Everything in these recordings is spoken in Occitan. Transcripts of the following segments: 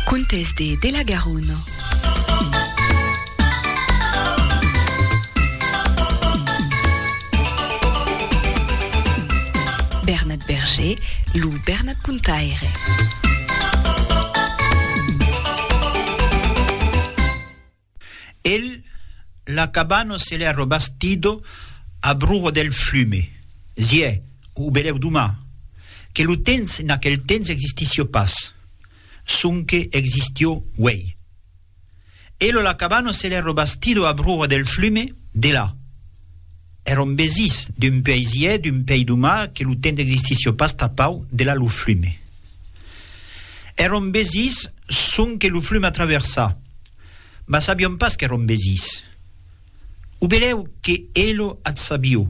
Contes de de la Garona. Bernat Berger, lo Bernat Contaire. El la cabano se l'è robastido a bruho del flume. Ziè, o belèu doma, que lo tens en aquel tens existissió pas, sonque existió uèi. El o la cabano se l'è robastido a bruho del flume, de la. È rombesís d'un puèi ziè, d'un pèi doma, que lo tens existissió pas tapau de la lo flume. È rombesís sonque lo flume a traversar. mas sabion pas qu'èron besís. O belèu que elo ath sabio,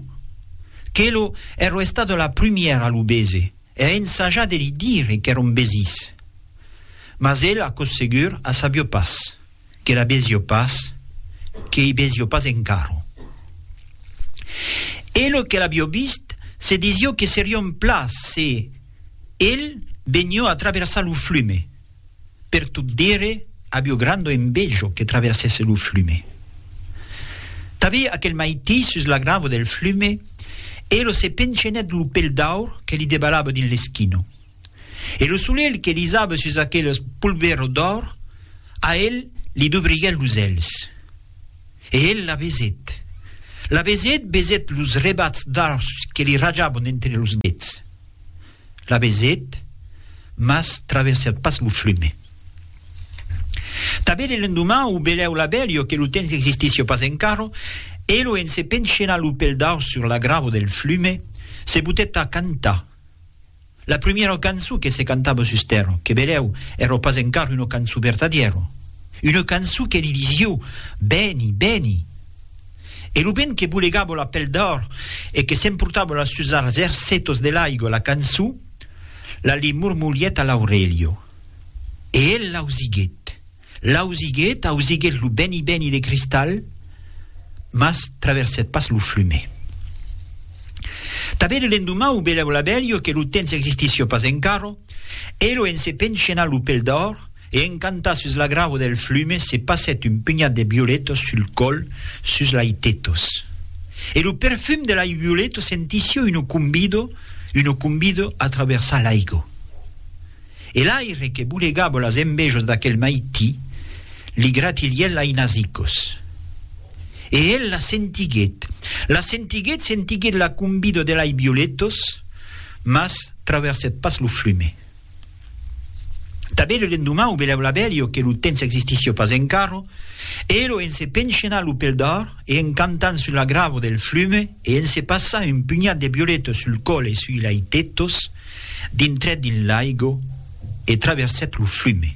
qu'elo ero estada la prumièra a lo bese e a ensajar de li dire qu'èron besís. Mas el, aquò segur, a sabio pas, que la besio pas, que ei besio pas encara. Elo que l'abio vist se disio que serion pla se el benio a traversar lo flume. Per tot dire, avió grando envejo que traversèsse lo flume. Tabé aquel maití sus la gravo del flume, Elo se penchènèt lo pel d'aur que li debalava dins l'esquino. E lo solelh que lisava sus aqueles polvero d'aur, a el li dubriguèt los èlhs. E el la besèt. La besèt, besèt los rebats d'aurs que li rajavon entre los dets. la vesèt, mas traversèt pas lo flume. Tanben e l'endoman o belèu la bèlio que lo temps existisio pas encara, elo en se penchenar lo pel daus sur la grava del flume, se butèt a cantar. La primièra cançon que se cantava sus tèrra, que belèu èra pas encara una cançon vertadièra, una cançon que li disio, Veni, veni! E lo vent que bolegavo la pel d'òr e que s'emportavo las sus arts ercetos de l'aigua la cançó, la li mormolièt a l'aurelha. E el l'ausiguèt, l'ausiguèt, ausiguèt lo beni beni de cristal, mas traversèt pas lo flume. Tanben lo lendomau velèvo la velha que lo temps existissió pas encara, e lo en se penchenar lo pel d'òr, E encantat sus la gravo del flume se passèt un punhat de violetos sul còl sus lai tetos. E lo perfum de lai violeto sentisio uno cumbido, uno cumbido a traversar l'aigo. E l'aire que bolegavo las envejos d'aquel maití li gratilièt lai nasicos. E el las sentiguèt, las sentiguèt, sentiguèt la cumbido de lai violetos, mas traversèt pas lo flume. Tanben lo lendomau bela bla belio que lo temps existisio pas encara, ero en se penchenar lo pel d'ar e en cantant sul agravo del flume e en se passar un pugnat de violetas sul còl e sui laitetos, dintrèt dins l'aigo e traversèt lo flume.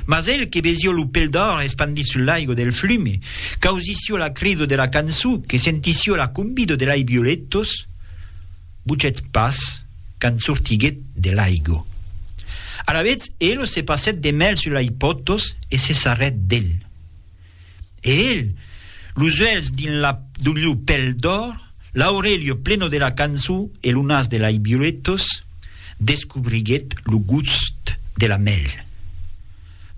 Mas el que vesió lo pel d'òr espandit sul laigo del flume, qu'ausissió la crido de la cançó, que sentissió la combido de lei violetos, buchèt pas quand sortiguèt de laigo. Alavetz elo se passèt de mèl sul lei potos e se sarrèt del. E el, los uèlhs dins la d'un liu pel d'òr, l'aurelio pleno de la cançon e lo nas de lai violetos, descobriguèt lo gust de la mèl.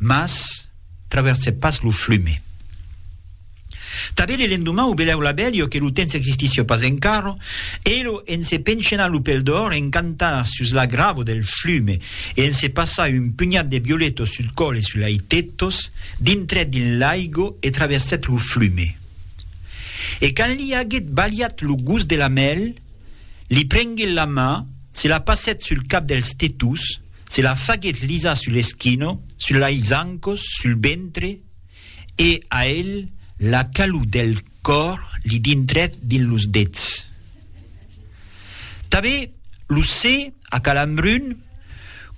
Mas traversèt pas lo flume. Tanben le lendoman o belèu la bèlio que lo temps existissi pas encara, elo en se penchena lo pel d'òr encantar sus la gravo del flume e en se passar un punhat de violetos sul còl e sul lai tetos, dintrèt dins l'aigo e traversèt lo flume. E quand li aguèt balhat lo gust de la mèl, li prenguèt la mà, se la passèt sul cap dels tetos, se la faguèt lisar sul eschino, sul lai zancos, sul ventre, E a el la calor del còr li dintrèt dins los dets. Tanben lo se a calambrun,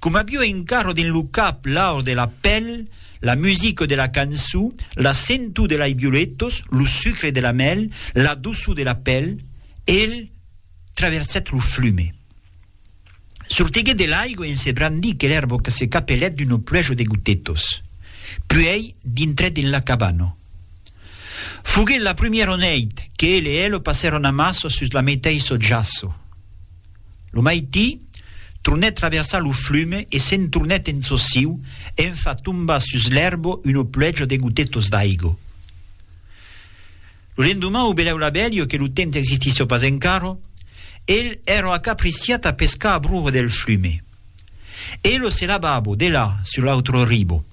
com avió encara dins lo cap l'aur de la pèl, la musica de la cançó, la sentor de lai violetas, lo sucre de la mèl, la doçor de la pèl, el traversèt lo flume. Sortiguèt de l'aigua en se brandir que l'èrbo que se capelèt d'uno pluejo de gotetos. Puèi dintrèt en la cabana. Foguèt la prumièro nèit que el e elo passèron amassa sus la meteissò jaço. Lo maití, tronèt traversar lo flume e se'n tornèt en çò siu en far tombar sus l'èrbo uno pluejo de gotetos d'aigo. Lo lendoman o belèu la bèlio que lo temps existisso pas encaro, el ero acapriciat a pescar a broho del flume. E lo se lavabo, de là, sur l'autro ribo.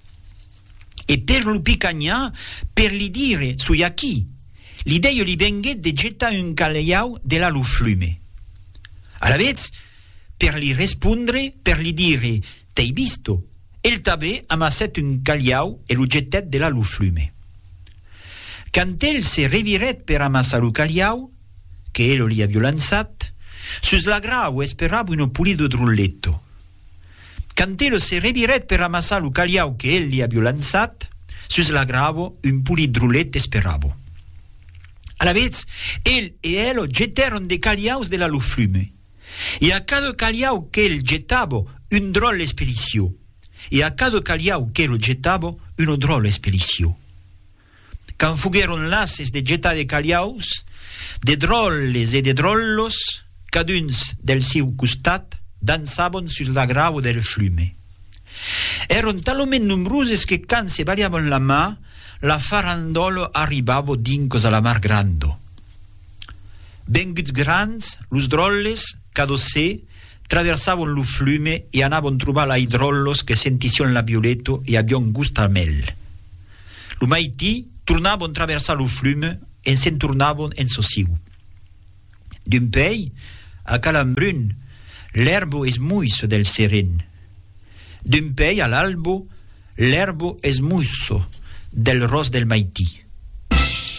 E per lo picanhar, per li dire, soi aquí, l'idèio li venguèt de getar un calhau de là lo flume. Alavetz, per li respondre, per li dire, T'ei visto! El tabé amassèt un calhau e lo jetèt delà lo flume. Quand el se revirèt per amassar lo calhau, que elo li avió lançat, sus la grau esperava uno pulido drulletto. Quand elo se revirèt per amassar lo calhau que el li avió lançat, sus la grau un pulit drullet esperava. Alavetz, el e elo jetèron de calhaus delà lo flume. e a cada calhau qu'el jetava un dròlle espelicio, e a cada calhau qu'el jetava una dròlle espelicio. Quand foguèron lases de jetar de calhaus, de dròlles e de dròllos, caduns del siu costat, dançavan sus la grava del flume. Èron talament nombroses que quand se balhavan la man, la farandòla arribava dincas a la mar granda. Venguts grands, los dròlles, cadó se, traversavon lo flume e anavon trobar lai dròllos que sentission la violeto e avion gust al mèl. Lo maití, tornavon traversar lo flume e se'n tornavon en sosiu. D'un pei, a Calambrun, l'èrbo es muisso del seren. D'un pei a l'albo, l'èrbo es muisso del ros del maití.